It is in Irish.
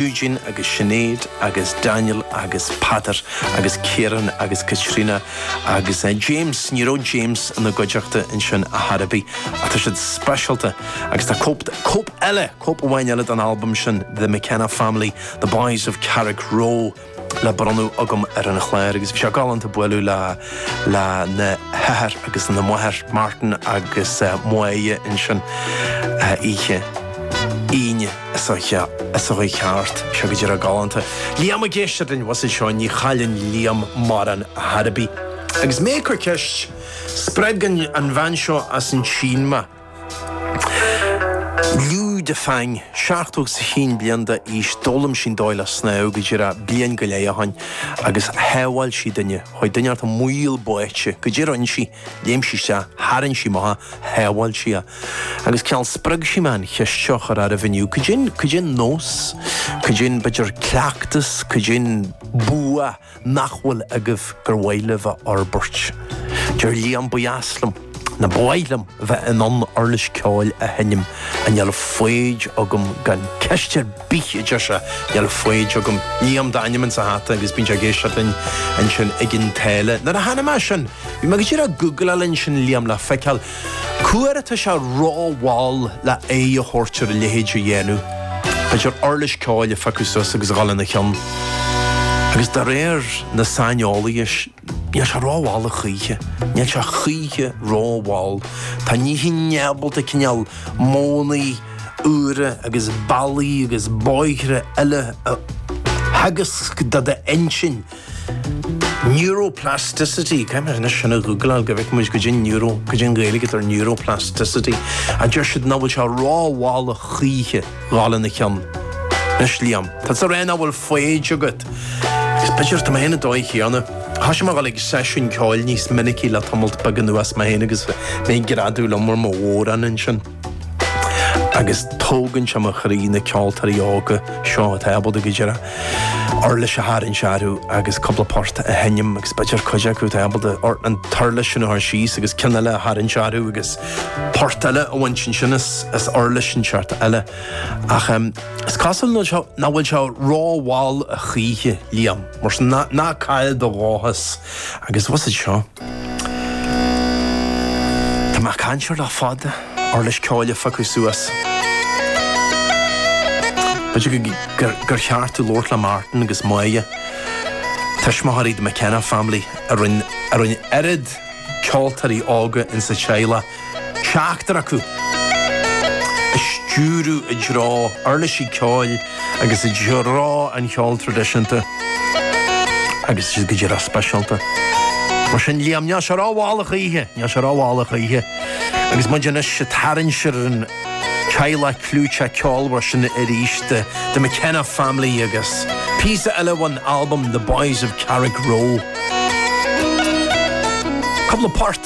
Eugene agus Sinéad agus Daniel agus Peadar agus Kieran agus Caitríona agus James, ní raibh James ina gcuideachta ansin ar chor ar bith ach tá siad speisialta agus tá cóip, cóip eile, cóip amháin eile den albam sin The McKenna Family, The Boys of Carrickroe le bronnadh agam ar an chláir agus bhí sé galánta bualadh le, lena n-athair agus lena máthair Martin agus Moya ansin oíche Aoine. Seo a chuaigh thart, seo go díreach galánta. Liam ag éisteacht linn, bhfuil a fhios agat seo, ní chailleann Liam mórán ar chor ar bith. Agus mé ag cur ceist, spreag an bhean seo as an tSín mé. Liu Defang, seachtó is a haon bliain d'aois, d'fhoghlaim sí an dóigh le snámh go díreach bliain go leith ó shin agus shábháil sí duine. Chuaigh duine bocht i mbaol báite. Go díreach ansin, léim sí isteach, tharraing sí amach, shábháil sí é. Agus cineál spreag sí mé an cheist seo a chur oraibh inniu cad é an, cad é an nós, cad é an b'fhéidir cleachtas, cad é an bua nach bhfuil agaibh gur mhaith libh a fhorbairt? Deir Liam ba dheas liom, nó ba mhaith liom bheith in ann uirlis ceoil a sheinm ach níl foighid agam gan ceist ar bith a deir sé níl foighid agam Liam d'ainm insa hata agus bíonn sé ag éisteacht linn ansin i gCionn tSáile nuair a chonaic mé sin bhí mé go díreach ag googláil ansin Liam le feiceáil Cá huair atá sé ró-mhall le aghaidh a thabhairt ar a leithéid a dhéanamh. B'fhéidir uirlis ceoil a phiocadh suas agus a dhul ina cheann. Agus de réir na saineolaithe, níl sé ró-mhall a choíche. Níl sé choíche ró-mhall. Tá an inchinn ábalta cineál modhanna úra agus bealaí agus bóithre eile a theagasc do d'intinn. Neuroplasticity, caithfidh mé anois sin a ghoogláil go bhfeice muid cad é neuro, cad é an Ghaeilge atá ar neuroplasticity ach deir siad nach bhfuil sé ró-mhall a choíche a dhul ina chionn. Anois Liam, tá tusa ag rá nach bhfuil foighid agat. Is b'fhéidir tá mé féin an dóigh chéanna. Thoisigh mé a dhul ag seisiún ceoil níos minicí le tamalt beag anuas mé féin agus mé ag greadadh liom ar mo bhodhrán ansin. agus tógann sé mo chroí na ceoltóirí óga seo atá ábalta go díreach uirlis a tharraingt orthu agus cúpla port a sheinm agus b'fhéidir cuid acu atá ábalta an uirlis sin a chur síos agus ceann eile a tharraingt orthu agus port eile a bhaint ansin as uirlis inteacht eile ach is cosúil nach bhfuil sé ró-mhall a choíche, Liam, mar sin ná caill do dhóchas. Agus bhfuil a fhios agat seo. Tá mé ag caint air le fada, uirlis ceoil a phiocadh suas. B'fhéidir gur cheart domh labhairt le Martin agus Moya, tuismitheoirí the McKenna family a rinn oiread ceoltóirí óga insa teaghlach. seachtar acu, a stiúradh i dtreo uirlisí ceoil agus i dtreo an cheoil traidisiúnta agus siad go díreach speisialta. Mar sin, Liam, níl sé rómhall choíche, níl sé rómhall choíche agus muid anois ag tarraingt ar an teaghlach clúiteach ceolmhar sin arís, The McKenna Family agus píosa eile ón albam The Boys of Carrickroe. Cúpla port.